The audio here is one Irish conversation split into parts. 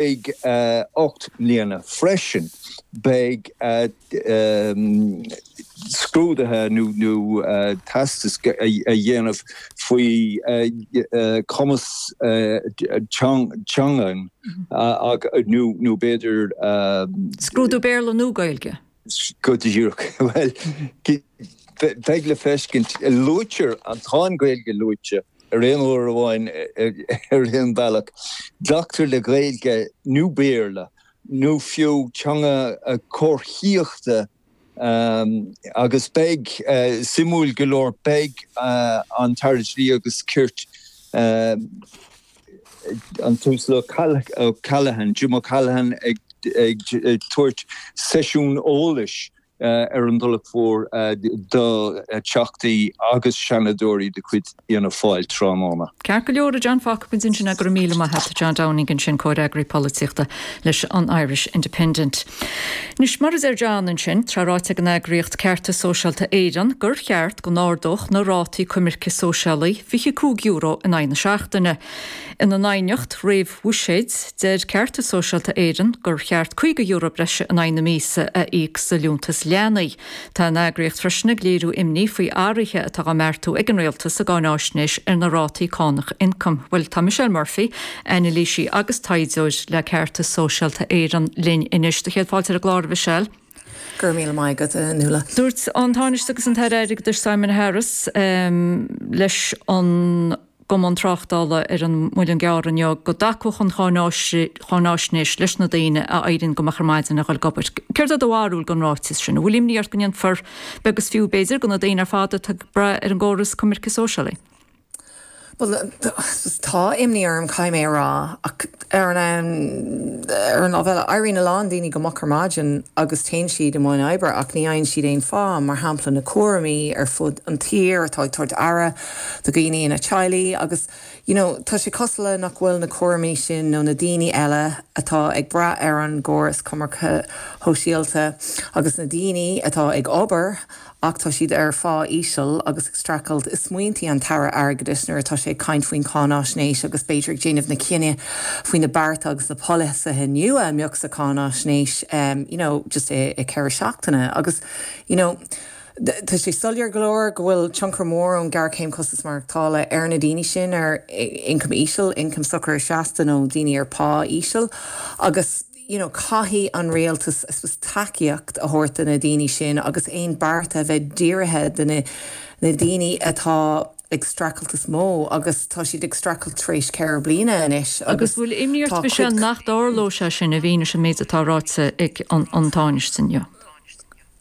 Beidh 8 mbliana freisin beidh scrúduithe nó teastas le déanamh faoi chumas teangan nó b'fhéidir. Scrúdú Béarla nó Gaeilge. Go díreach. Bhuel, beidh le feiscint. Luaitear an, tá an Ghaeilge luaite araon uair amháin ar aon bhealach. Glactar le Gaeilge nó Béarla nó fiú teanga comharthaíochta agus beidh, suimiúil go leor, beidh an tAire Dlí agus Cirt, an tUasal O'Callaghan, Jim O'Callaghan ag tabhairt seisiún eolais ar an Tulach Mhór do Theachtaí agus Seanadóirí de chuid Fhianna Fáil tráthnóna. Ceart go leor, fágfaidh muid ansin é, go raibh míle maith a't, a John Downing, ansin, Comhfhreagraí Polaitíochta leis an Irish Independent. Anois, mar a deir John ansin, tá ráite ag an eagraíocht Ceartas Sóisialta Éireann gur cheart go n-ardófaí na rátaí coimirce sóisialaí €25 in aghaidh na seachtaine. Ina n-aighneacht réamhbhuiséid, deir Ceartas Sóisialta Éireann gur cheart €50 breise in aghaidh na míosa a íoc sa Liúntas Leanaí. Tá an eagraíocht freisin ag léiriú imní faoi athruithe atá á mbeartú ag an Rialtas sa gcáinaisnéis ar na rátaí cánach ioncaim. Bhuel, tá Michelle Murphy, anailísí agus taighdeoir le Ceartas Sóisialta Éireann, linn anois. Do chéad fáilte ar an gclár, a Mhichelle. Go raibh míle maith agat, Nuala. Dúirt an Tánaiste agus an tAire Airgeadais Simon Harris leis an. gCumann Tráchtála ar an Muileann gCearr inniu go dtacódh an cháinaisnéis leis na daoine a éiríonn go moch ar maidin le dhul ag obair. Céard é do bharúil den ráiteas sin? An bhfuil imní ort go ndéanfar beag is fiú, b'fhéidir, de na daoine ar fad atá ag brath ar an gcóras coimirce sóisialaí? Bhuel, tá imní orm, caithfidh mé a rá, ach ar an lámh eile, éiríonn a lán daoine go moch ar maidin agus téann siad i mbun oibre ach ní fhaigheann siad aon phá, mar shampla na cúraimí ar fud an tír atá ag tabhairt aire do dhaoine ina teaghlaigh agus you know tá sé cosúil le nach bhfuil na cúraimí sin nó na daoine eile atá ag brath ar an gcóras coimirce shóisialta agus na daoine atá ag obair ach tá siad ar phá íseal agus ag streachailt i smaointí an tAire Airgeadais nuair atá sé ag caint faoin cáinaisnéis agus b'fhéidir ag déanamh na cinneadh faoi na bearta agus na polasaithe nua a mbeadh sa cháinaisnéis you know just i 4 seachtaine agus you know. Tá sé soiléir go leor go bhfuil tionchar mór ag an ghéarchéim costas maireachtála ar na daoine sin ar ioncam íseal, ioncam socair seasta nó daoine ar phá íseal agus you know caithfidh an Rialtas I suppose tacaíocht a thabhairt do na daoine sin agus aon bearta a bheith dírithe do na na daoine atá ag streachailt is mó agus tá siad ag streachailt tar éis ceithre bliana anois Agus agus bhfuil imní ort a Mhichelle nach dtarlóidh sé sin i bhfianaise an méid atá ráite ag an Tánaiste inniu?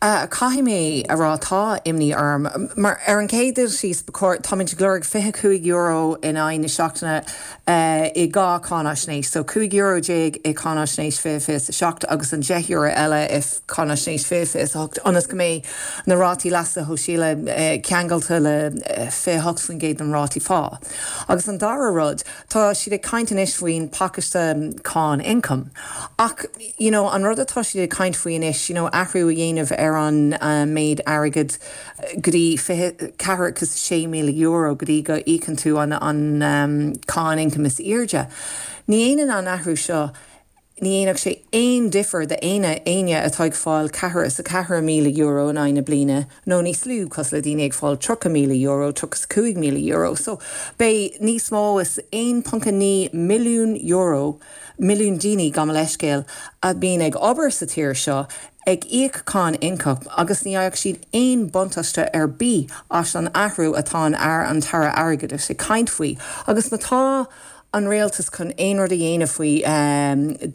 A, Caithfidh mé a rá tá imní orm, mar ar an gcéad dul síos ba chóir, táimid ag lorg €25 in aghaidh na seachtaine i dhá cháinaisnéis, so €15 i cáinaisnéis 2027 agus an €10 eile i cáinaisnéis 2028, ionas go mbeidh na rátaí leasa shóisialaigh ceangailte le 28% den rátaí phá. Agus an dara rud, tá siad ag caint anois faoin pacáiste Cáin Ioncaim, ach, you know an rud atá siad ag caint faoi anois you know athrú a dhéanamh ar an méid airgead go dtí fiche ceathracha is a sé míle euro go dtí go íocann tú an an cáin ioncaim is airde ní dhéanann an athrú seo ní dhéanfadh sé aon difear do éinne éinne atá ag fáil ceathracha is a ceathair míle euro in aghaidh na bliana nó níos lú cosúil le daoine ag fáil tríocha míle euro tríocha is cúig míle euro so beidh níos mó is aon ponc a naoi milliún euro milliún daoine gabh mo leithscéal a mbíonn ag obair sa tír seo ag íoc cáin ioncaim agus ní fhaigheadh siad aon buntáiste ar bith as an athrú atá an Aire an tAire Airgeadais ag caint faoi agus má tá an Rialtas chun aon rud a dhéanamh faoi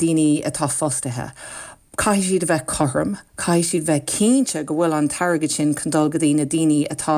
daoine atá fostaithe Caithfidh siad a bheith cothrom, caithfidh siad a bheith cinnte go bhfuil an t-airgead sin chun dul go dtí na daoine atá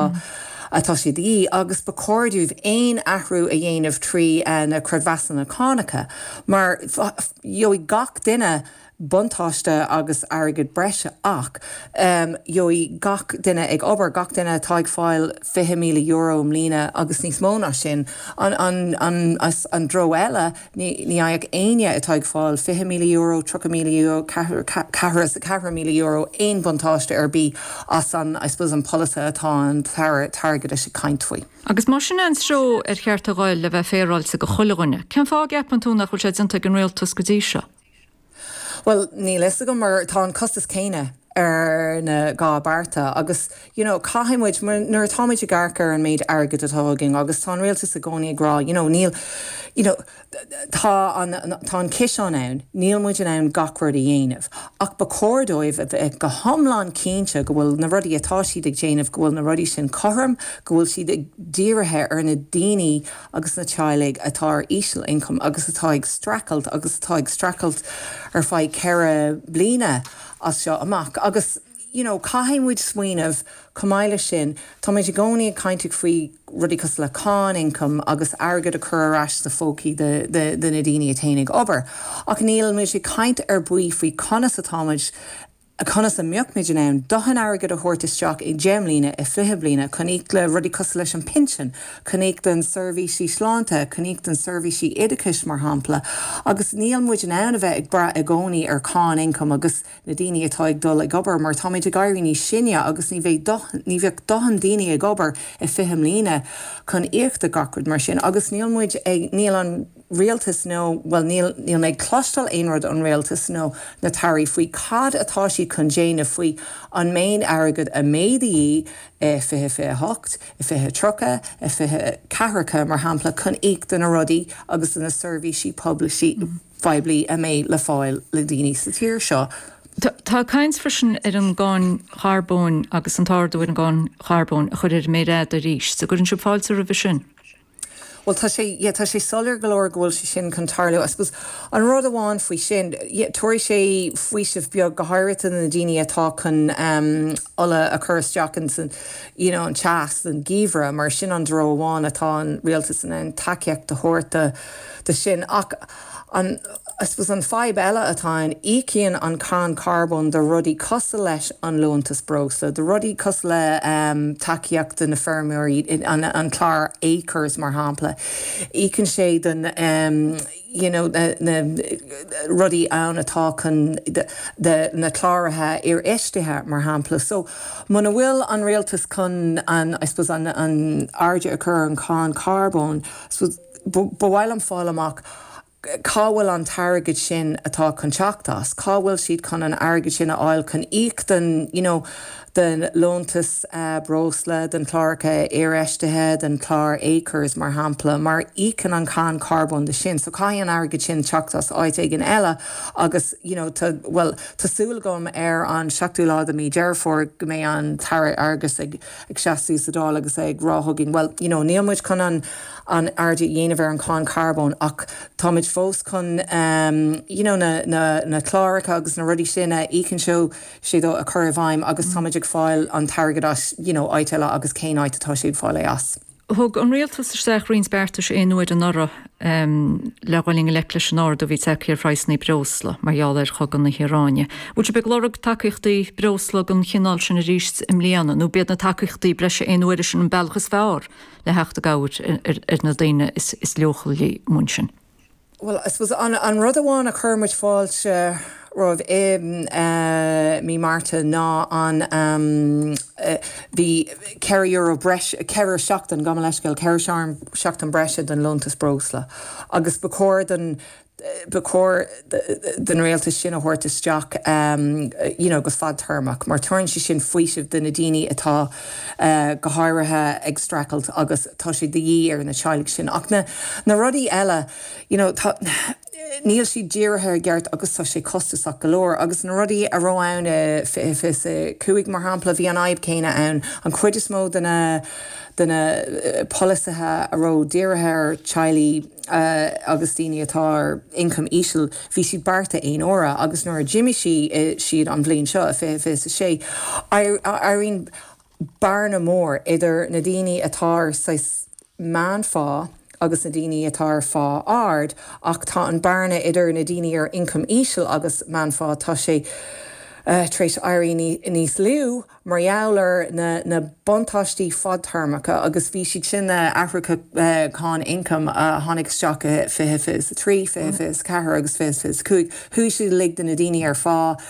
atá sé de dhíth, agus ba chóir dóibh aon athrú a dhéanamh trí na creidmheasanna cánacha, mar gheobhaidh gach duine buntáiste agus airgead breise ach gheobhaidh gach duine ag obair, gach duine atá ag fáil €20,000 i mbliana agus níos mó ná sin, an treo eile. Ní fhaigheadh éinne atá ag fáil €20,000, €30,000, €44,000 aon buntáiste ar bith as an, I suppose, an polasaí atá an tAire Airgeadais ag caint faoi. Agus más in é an treo ar cheart a dhul, le bheith féaráilte, go chuile dhuine, cén fáth a gceapann tú nach bhfuil sé déanta ag an Rialtas go dtí seo? Bhuel, níl fhios agam mar tá an costas céanna ar na dhá bhearta agus you know caithfidh muid, nuair atá muid ag amharc ar an méid airgead atá againn agus tá an Rialtas i gcónaí ag rá you know níl you know tá an tá an ciseán ann, níl muid in ann gach rud a dhéanamh ach ba chóir dóibh a bheith go hiomlán cinnte go bhfuil na rudaí atá siad ag déanamh go bhfuil na rudaí sin cothrom, go bhfuil siad ag dírithe ar na daoine agus na teaghlaigh atá ar íseal-ioncam agus atá ag streachailt agus atá ag streachailt ar feadh ceithre bliana as seo amach agus you know caithfidh muid smaoineamh chomh maith leis sin táimid i gcónaí ag caint faoi rudaí cosúil le cáin ioncaim agus airgead a chur ar ais sna pócaí de de na daoine a théann ag obair ach níl muid ag caint ar bith faoi conas atáimid conas a mbeimid in ann dóthain airgid a thabhairt isteach i ndeich mbliana, i fiche mbliana, chun íoc le rudaí cosúil leis an pinsin, chun íoc don seirbhísí sláinte, chun íoc don seirbhísí oideachais, mar shampla, agus níl muid in ann a bheith ag brath i gcónaí ar cháin ioncaim agus na daoine atá ag dul ag obair, mar táimid ag éirí níos sine agus ní bheidh dóthain, ní bheadh dóthain daoine ag obair i fiche mbliana chun íoc do gach rud mar sin agus níl muid ag, níl an. Rialtas nó, bhuel, níl, níl mé ag cloisteáil aon rud ón Rialtas nó na tAirí faoi cad atá siad chun déanamh faoi an méid airgead a mhéadú i 2028, i 2030, i 20, ceathracha, mar shampla, chun íoc do na rudaí agus do na seirbhísí poiblí, phoiblí a mbeidh le fáil le daoine sa tír seo. Tá caint freisin ar an gcáin charbóin agus an t-ardú ar an gcáin charbóin a chur ar an méar fhada arís. An gcuireann sibh fáilte roimhe sin? Bhuel, tá sé, yeah, tá sé soiléir go leor go bhfuil sé sin chun tarlú. I suppose, an rud amháin faoi sin, yeah, tabharfaidh sé faoiseamh beag, go háirithe do na daoine atá chun um, ola a chur isteach in san, you know, an teas, an geimhreadh, mar sin an treo amháin atá an Rialtas in ann tacaíocht a thabhairt do, do sin. Ach, An, I suppose, an fadhb eile atá ann, íocann an cáin carbóin do rudaí cosúil leis an liúntas breosla, do rudaí cosúil le tacaíocht do na feirmeoirí, an clár Acres, mar shampla. Íocann sé do na, you know, na rudaí ann atá chun, do na cláraithe aisfheistithe, mar shampla. So, muna bhfuil an rialtas chun an, I suppose, an airde a chur ar an cáin carbóin, I suppose, Ba mhaith liom fáil amach cá bhfuil an t-airgead sin atá chun teacht as, cá bhfuil siad chun an airgead sin a fháil chun íoc den, you know, den liúntas breosla, den chláracha aisfheistithe, den chlár acres mar shampla, mar íocann an cáin charbóin de sin. So caithfidh an airgead sin teacht as áit éigin eile agus, you know, tá, bhuel, tá súil agam ar an seachtú lá de mí Dheireadh Fómhair go mbeidh an tAire Airgeadais ag ag seasamh sa Dáil agus é ag rá chugainn, bhuel, you know, níl muid chun an airde a dhéanamh ar an cháin charbóin ach táimid fós chun you know na cláracha agus na rudaí sin a íocann sé dó a chur i bhfeidhm agus táimid ag fáil an t-airgead as, you know, áit eile agus cén áit atá sé ag fáil é as? Thug an Rialtas isteach roinnt beartais aon uaire anuraidh le dhul i ngleic leis an ardú a bhí tagtha ar phraghsanna breosla mar gheall ar chogadh na hIaráine. An bhfuil sibh ag lorg tacaíochtaí breosla den chineál sin arís i mbliana nó ab iad na tacaíochtaí breise aon uaire sin an bealach is fearr le theacht i gcabhair ar na daoine is leochailí sin? Bhuel, I suppose, an rud amháin a chuir muid fáilte roimh i mí Márta ná an, bhí ceithre euro breis, ceithre seachtain, gabh mo leithscéal, ceithre seachtain breise den liúntas breosla agus ba chóir don, ba chóir don Rialtas sin a thabhairt isteach you know go fadtéarmach mar tugann sé sin faoiseamh do na daoine atá go háirithe ag streachailt agus, tá sé de dhíth ar na teaghlaigh sin ach na rudaí eile you know tá níl siad dírithe i gceart agus tá sé costasach go leor agus na rudaí a raibh ann i fiche fiche a cúig mar shampla bhí an fhadhb céanna ann an chuid is mó de na de na polasaithe a raibh dírithe ar teaghlaigh agus daoine atá ar ioncam íseal bhí siad bearta aon uaire agus nuair a d'imigh siad an bhliain seo i fiche fiche a sé I I I mean bearna mór idir na daoine atá ar saghas meánphá agus na daoine atá ar phá ard ach tá an bearna idir na daoine ar ioncam íseal agus meánphá, tá sé tar éis éirí níos lú mar gheall ar na buntáistí fadtéarmacha agus bhí siad sin, na hathruithe cáin ioncaim a tháinig isteach i 2023, 2024 agus 2025, chuaigh siad uilig do na daoine ar phá.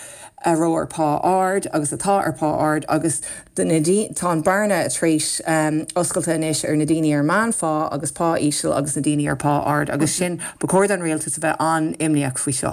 a raibh ar pá ard agus atá ar pá ard agus do na daoine, tá an bearna tar éis oscailte anois ar na daoine ar meánphá agus pá íseal agus na daoine ar pá ard agus sin, ba chóir don Rialtas a bheith an-imníoch faoi seo.